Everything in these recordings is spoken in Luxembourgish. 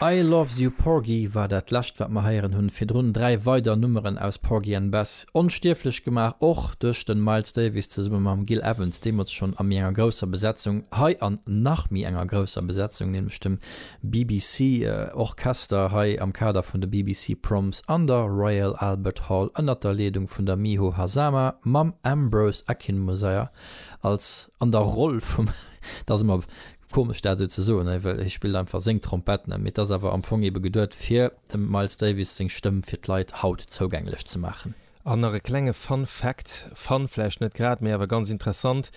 I Loves You Porgy war dat lescht wat mer heieren hunn. Virdrun 3 weider Nummeren aus Porgy and Bess onstierflech gemaach, och duerch den Miles Davis zesumme mam Gil Evans, deemools schonn a méi enger grousser Besetzung, hei an nach méi enger grousser Besetzung, nämlech dem BBC Orchester hei am Kader vun de BBC Proms an der Royal Albert Hall ënnert der Leedung vun der Miho Hazama mam Ambrose Akinmusire als an der Roll vum. Komesch dat esou ze soen, hei, well hie spillt einfach seng Trompett net, mee et ass awer am Fong ebe geduet fir dem Miles Davis seng Stëmm fir d'Leit haut zougänglech ze maachen. An nach e klenge Fun Fact, fun vläicht net grad, mee awer ganz interessant,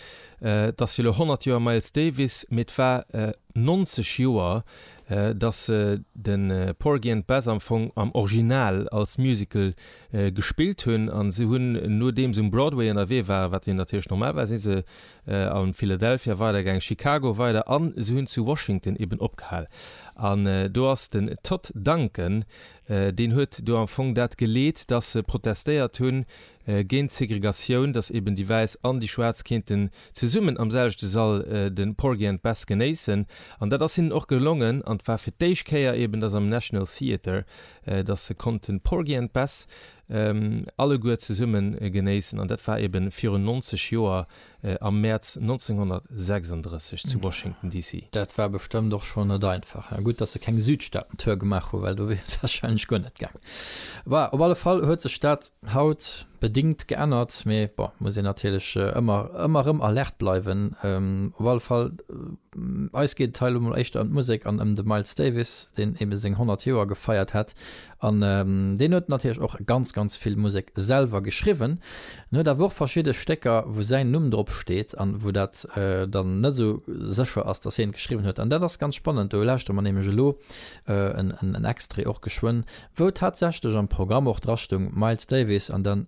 Et ass jo elo 100 Joer Miles Davis, mee et war 90 Joer, datt se de Porgy and Bess am Fong am Original als Musical gespillt hunn. A se hunn, nodeems se um Broadway ënnerwee waren, wat jo natierlech normal war, si se A Philadelphia weider gaang, Chicago weider an se hunn zu Washington eben opgehal. An do ass den Todd Duncan, deen huet do am Fong dat geleet, datt se protestéiert hu géint d'Segregatioun, datt eben déi Wäiss an déi Schwaarz kéinten zesummen am selwechte Sall de Porgy and Bess genéissen. An dat ass hinnen och gelongen. An et war fir d'éischt Kéier eben, datt am National Theatre, datt se konnten Porgy and Bess alleguer zesumme genéissen. An dat war eebe virun 90 Joer am Mäerz 1936 zu Washington DC. Dat war bestëmmt och schonn net einfach. Gutt, dass se keng Südstaaten-Tour gemaach hu well do wier et warscheinlech guer net gaangen. Bon, op alle Fall huet sech dat haut bedingt geännert. Mee bon, muss een natierlech ëmmer, ëmmer erëm alerte bleiwen. Op alle Fall, eis geet et hei elo mol éischter ëm d'Musek an ëm de Miles Davis, deen eebe seng 100 Joer gefeiert hat. An deen huet natierlech och ganz, ganz vill Musek selwer geschriwwen. En huet awer och verschidde Stécker, wou säin Numm drop steet an wou dat dann net esou sécher ass, dass hien et geschriwwen huet. An dat ass ganz spannend, do lauschtere mer nämlech elo en Extrait och geschwënn, wou tatsächlech am Programm och dra stoung, Miles Davis an dann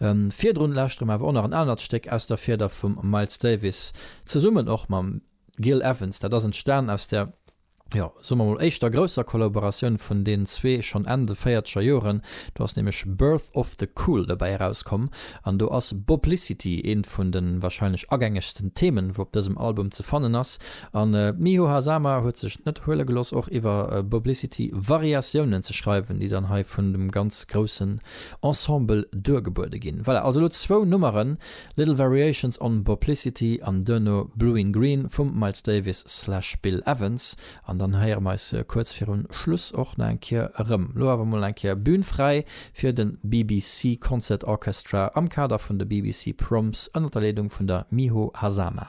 Virdrun lauschtere mer awer och nach en anert Stéck aus der Fieder vum Miles Davis, zesummen och mam Gil Evans. Dat ass entstan aus der, jo, soe mer mol, éischter grousser Kollaboratioun vun deenen zwee, schonn Enn de véierzeger Joren. Do ass nämlech Birth of the Cool dobäi erauskomm an do ass Boblicity eent vun de warscheinlech agängegsten Themen, wou op dësem Album ze fannen ass. A Miho Hazama huet sech net huele gelooss, och iwwer Boblicity Variatiounen ze schreiwen, déi dann hei vun dem ganz groussen. Ensemble duergebuede ginn. Voilà, also elo zwou Nummeren, Little Variations on Boplicity an duerno Blue in Green vum Miles Davis slash Bill Evans. An dann héiere mer eis kuerz viru Schluss och nach eng Kéier erëm. Elo awer mol eng Kéier Bühn fräi fir de BBC Concert Orchestra am Kader vun de BBC Proms ënner der Leedung vun der Miho Hazama.